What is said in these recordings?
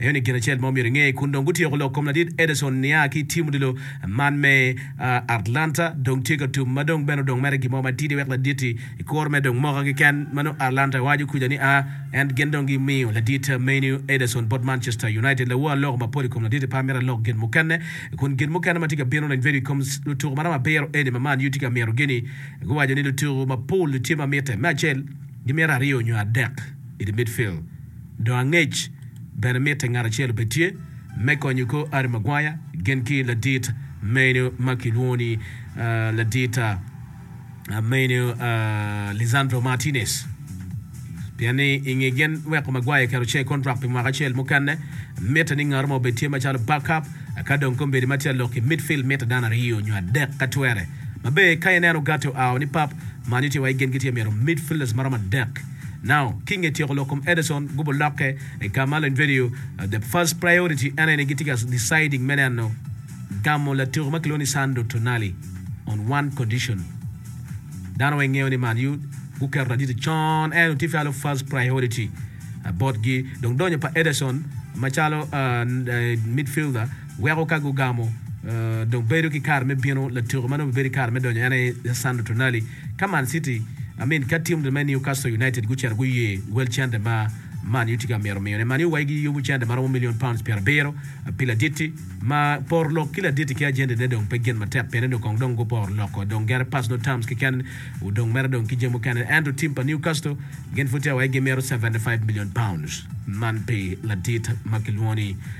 Aye ni gin acel ma omyero inge kun dong gutyeko lok kom ladit Ederson nia ki i tim odilo man me Atlanta dong tye ka tum ma dong bene odong mere gin mo matidi wek laditi i kuro me dong moka keken ma nongo Atlanta waco kuca ni a en gin dong gi miyo ladit menu Ederson bot Manchester United lawo aloko mapol i kom laditi pa amito alok gin mukene kun gin mukene ma tye ka bino reny bedo i kom lutuku maromo abiro eni ma Man U tye ka mito gini guwaco ni lutuku mapol tye ma mite me acel gimito aryo nyo adek. i the midfield. Dong angec bene mitte ngat acel obed tye me konyo kor Harry Maguire gin ki ladit meno ma kilwongo ni ladit meno Lisandro Martinez pien ni i nge gin weko Maguire keto ce kontrak pi mwaka acel mukene mitte ni ngato mo obed tye macalo backup ka dong kombedi ma tye lok i midfield mitte dano aryo nyo adek ka twere. Maber ka ineno ogati oa o ni pap man itye wa i gengi tye mito midfielders maromo adek now kinge tyeko lok kom Ederson gubo lokke i Carmelo in video the first priority ene ni gitye ka deciding me neno gamo latuku ma kilwongo ni Sandro Tonali on one condition dano weng ngeyo ni man u guketo aditi con en otifi alo first priority botgi dong donyo pa Ederson macalo midfielder Weko ka gugamo, dong bedo ki kare me bino latuko ma nongo bibedo ki kare me donyo en aye Lisandro Tonali. Ka Man City, I mean ka tim me Newcastle United gucito guye wel cente ma Man U tye ka mito miyone, Man U wai giyubo cente ma romo million pounds pyerabiro pi ladit-ti, ma poro lok ki ladit-ti ki ajentine dong pe gin matek pien ni kong dong guporo loko dong gere pass nongo terms keken odong mere dong ki jami mukene. Ento tim pa Newcastle gin pud tye ka wai gimito seventy five million pounds man pi ladit ma kilwongo ni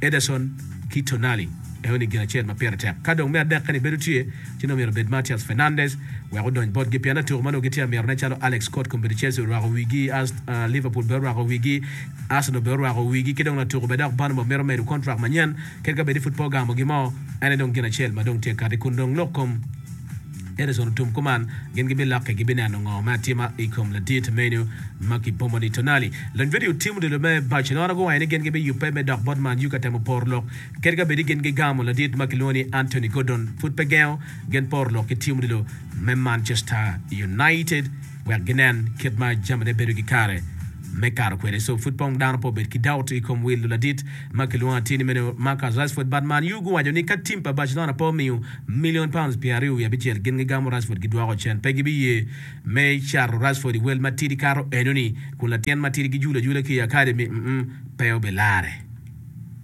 Ederson ki Tonali eno ni gin acel ma pire tek ka dong me adek kani bedo tye ci nongo myero obed Matheus Fernandes wek odony botgi pien latyeko ma nongo gitye amito ne calo Alex Scott kombeddi Chelsea orwako wigi, Liverpool bene orwako wigi, Arsenal bene orwako wigi ki dong latuko bene dok Bournemouth mito medo contract manyen kadi ka bedi pud pe ogamo gimo ene dong gin acel ma dong tye kati kun dong lok kom. Edison otum kuman, gin gibilokke gibineno ngo me atima i kom ladit meno ma kipomo ni Tonali. Lony Vedio Tim odilo me Barcelona guwaco ni gin gibiyubbe me dok bot Man U ka temo poro lok kit ka bedi gin gigamo ladit ma kilwongo ni Anthony Gordon pud pe gengo gin poro lok ki tim odilo me Manchester United. wek ginen kit ma jamine bedo ki kare me kato kwede. So pud pong dano pe obed ki doubt i kom wil luladit ma kilwongo atir ni meno Marcus Rashford. But Man U guwaco ni ka tim pa Barcelona pe omiyo million pounds pyer aryo wiye abicel gin gigamo Rashford gidwoko cen. Pe gibiye me cato Rashford i wel matidi kato enoni kun latin matidi gijulu ajula ki i academy, mm pe obilarre.